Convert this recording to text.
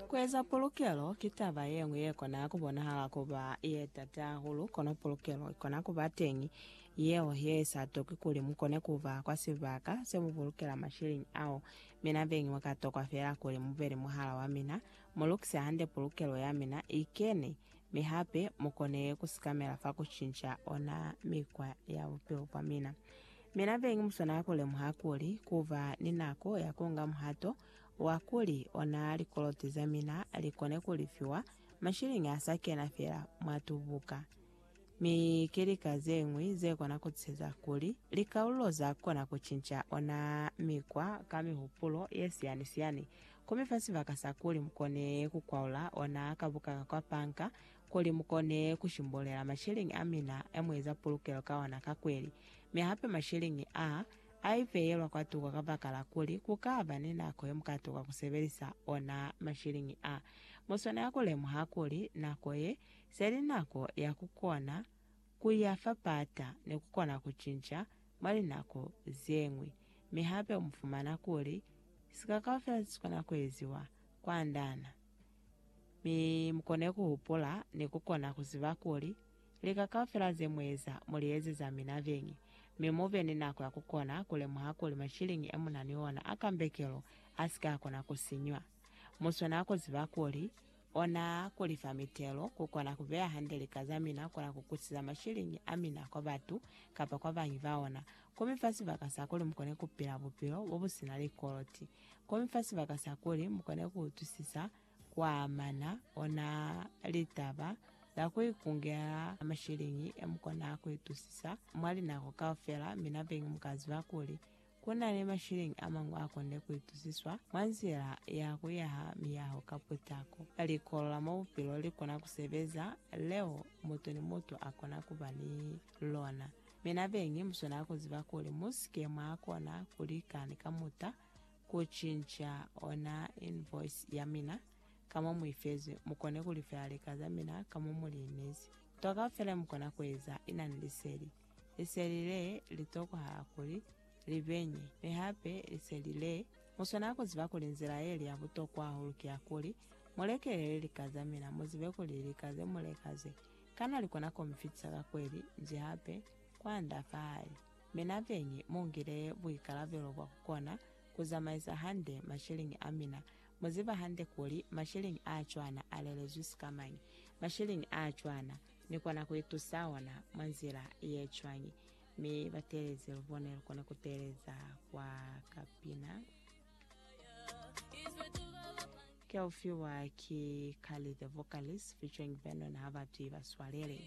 Kueza pulukelo ki taba yeñwi yekona kubonahala kuba yetata hahulu, kono pulukelo ikona kuba teñi yeo yeisa toki kuli mukone kuba kwa sibaka semupulukela masheleñi ao. Mina beñi mwakatokwa feela kuli mube ni muhala wamina, mulukise hande pulukelo yamina ikene Mi hape mu kone ku sikamela fa ku cinca ona mikwa ya bupilo bwa mina. Mina beñi mu swanela ku lemuha kuli ku ba ni nako ya ku nga muhato wa kuli ona likoloti za mina li kone ku lifiwa mashiliñi a sa kena fela mwa tubuka. Mi ki lika ze ñwi ze kona ku tuseza kuli likaululo za kona ku cinca ona mikwa ka mihupulo ye siyani-siyani Komi fa sibaka sa kuli mukone kukwaula ona ka buka ka kwa panka, kuli mukone kushimbulela masheleñi amina emueza pulukelo ka ona ka kweli. Mi hape masheleñi aa, aipeyelwa kwatuko kabakala kuli kukaba ni nako yemukatuka kusebelisa ona masheleñi aa. Muswanela kulemuha kuli nako ye, seli nako ya kukona. Ku ya fapata ne ku kona ku cinca mwa linako ze ñwi, mi hape mu fumana kuli sika kaufela se si kona ku eziwa kwa ndana. Mi mu kone ku hupula ni ku kona ku ziba kuli lika kaufela ze mu eza mu li ezeza mina beñi, mi mu be ni nako ya ku kona ku lemuha kuli mashiliñi e mu na ni ona a kambekelo a si ka kona ku sinywa. Mu swanela ku ziba kuli Ona kuli fa mitelo ku kona ku beya hande lika za mina, kona ku kusiza mashiliñi a mina kwa batu kapa kwa bañi ba ona, komi fa sibaka sa kuli mukone ku pila bupilo bo bu sina likoloti, komi fa sibaka sa kuli mukone ku utwisisa kwa mana, ona litaba za ku ikungela mashiliñi e mu kona ku itusisa mwa linako kaufela, mina bengi mu ka ziba kuli Ku na ni masheleñi a mañwi a konde ku itusiswa mwa nzila ya ku yaha miyaho ka putako. Likolo la mwa Bupilo li kona ku sebeza, leo mutu ni mutu a kona ku ba ni lona. Mi na beñi mu swanela ku ziba kuli mu si ke mwa kona ku lika ni kamuta ku cinca ona invoice ya mina ka mo mu i fezwi, mu kone ku lifela lika za mina ka mo mu li inezi. Nto kaufela yo mu kona ku eza i na ni liseli. Liseli le li tokoha kuli li benye, mi hape liseli le mu swanela ku ziba kuli nzila ye li ya butokwa hahulu ki ya kuli mu lekelele lika za mina, mu zibe kuli lika ze mu leka ze, kana li kona ku mi fitisa ka kweli nji hape kwanda fahali. Mina benyi mu ngile buikalabelo bwa ku kona ku zamaisa hande mashiliñi a mina. Mu ziba hande kuli mashiliñi a cwana a lelezwi sikamañi? Mashiliñi a cwana. Ni kona ku itusa ona mwa nzila ye cwañi? Mi batelezi lubone lukona kuteeleza kwa kapina. Keufiwa ki Carly the Vocalist featuring Vernon Habatwi baswalele.